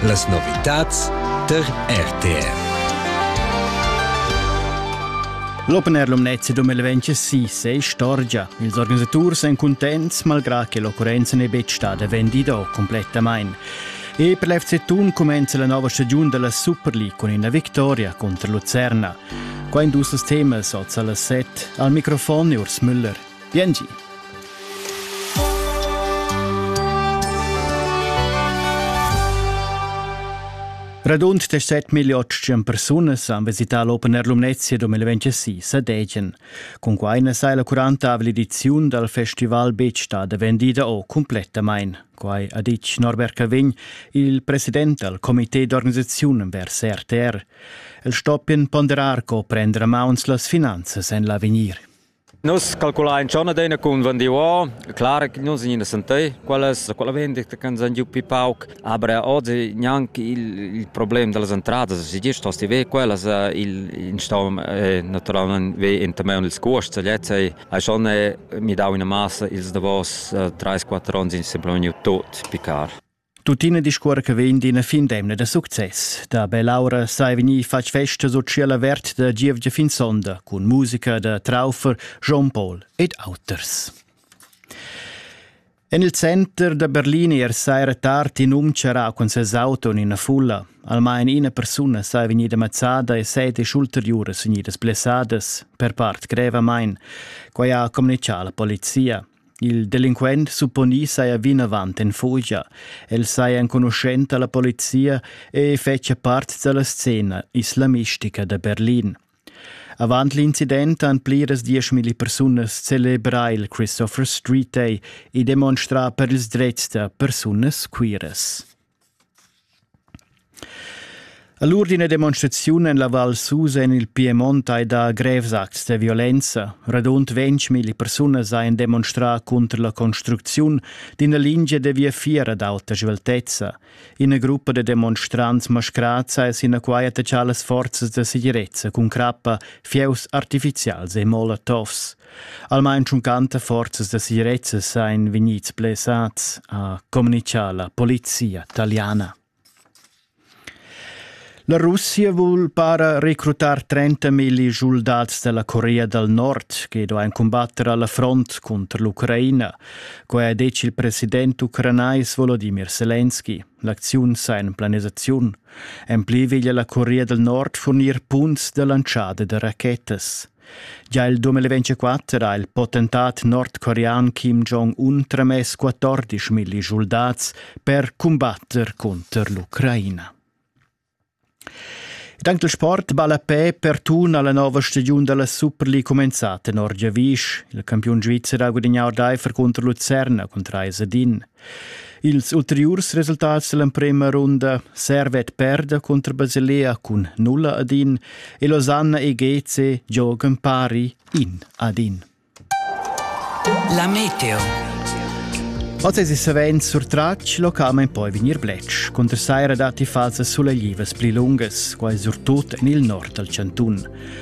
Las novitads tar RTR. L'Open Air Lumnezia 2026 è istorgia. Ils organisaturs èn cuntents malgrà che l'occurrenza n'è betg stada vendida complettamain. E per l'FC Thun cumenza la nova stagiun della Super League con una vittoria contro Lucerna. Qua in dus temas oz alle set. Al microfon Urs Müller. Biengi. Radund 17.800 persunas han visità l'Open Air Lumnezia 2026 a Degen. Cun quai na sai la curantavla ediziun dal festival betg stada vendida o cumplettamain. Quai ha ditg Norbert Cavegn, il president dal comité d'organisaziun vers RTR. El stoppien ponderar co prender a mauns las finanzas en l'avegnir. Nus calculain schon adina cun vendiuor, clar che nus ina sentei quellas, quella vendita che san giu pi pauc, aber oggi gnanc il, il problem dallas entradas, si dir stosti ve quellas, il, in staum e naturalmente ve entameun ils cuosts, gliez ei, ei schon mi dau ina massa ils davos 3-4 onns in semplice tut picar. Tuttina discuor che vegn d'ina fin d'emna da success. Da Bell'aura sai vegnir fatg festa sociala vert da Gievgia fin sonda cun musica da Traufer, Jean Paul ed auters. En il center da Berlin er saira tard in um charrà cun ses auto en ina fulla. Almain ina persuna sai vegnida mazzada e sedes ulteriuras vegnidas blessadas, per part grevamain. Quai ha communicà la polizia. Il delinquent supponì saja vinavant en fugia. El saja enconuschent a la polizia e fetschia part da la scena islamistica da Berlin. Avant l'incident han pliras dieschmilli persunas celebrà il Christopher Street Day e demonstrà per ils drets da persunas queeras. All'urdine demonstraziun en la Val Susa en il Piemont hai dà grevs acts da violenza. Radund 20.000 persunas hajan demonstrà cunter la construcziun d'ina lingia da viafier ad auta sveltezza. Ina gruppa da demonstrants mascrats ha sinaquai attachà las forzas da segirezza cun crappa, fieus artifizials e molotovs. Almain tschuncanta forzas da sirezza sain vegnids blessats, ha communichà la polizia taliana. La Russia vul para recrutar 30.000 soldats della Corea dal Nord che do ein combatter alla front contro l'Ucraina. Quai ha detg il president ucranais Volodymyr Zelensky. L'acziun sa in planisaziun. En pli veglia la Corea del Nord fornir punts de lanciada de rachetas. Gia il 2024 ha il potentat nordcorean Kim Jong-un tramess 14 milli soldats per cumbatter cunter l'Ucraina. Dank del sport balla pe per tun alla nova stagiun della Super League comenzata in Orgiavisch. Il campiun svizzer ha guadagnato Eifer contro Lucerna con 3 din. Ils ulteriurs resultats dall'emprema runda servet perda contro Basilea cun nulla ad in e Losanna e Geze giogan pari in ad in. La Meteo Oz es savend surtratg locamen poi vegnir blech, contra saira dati fasa suleglivas pli lungas, quai surtut en il nord dal Cantun.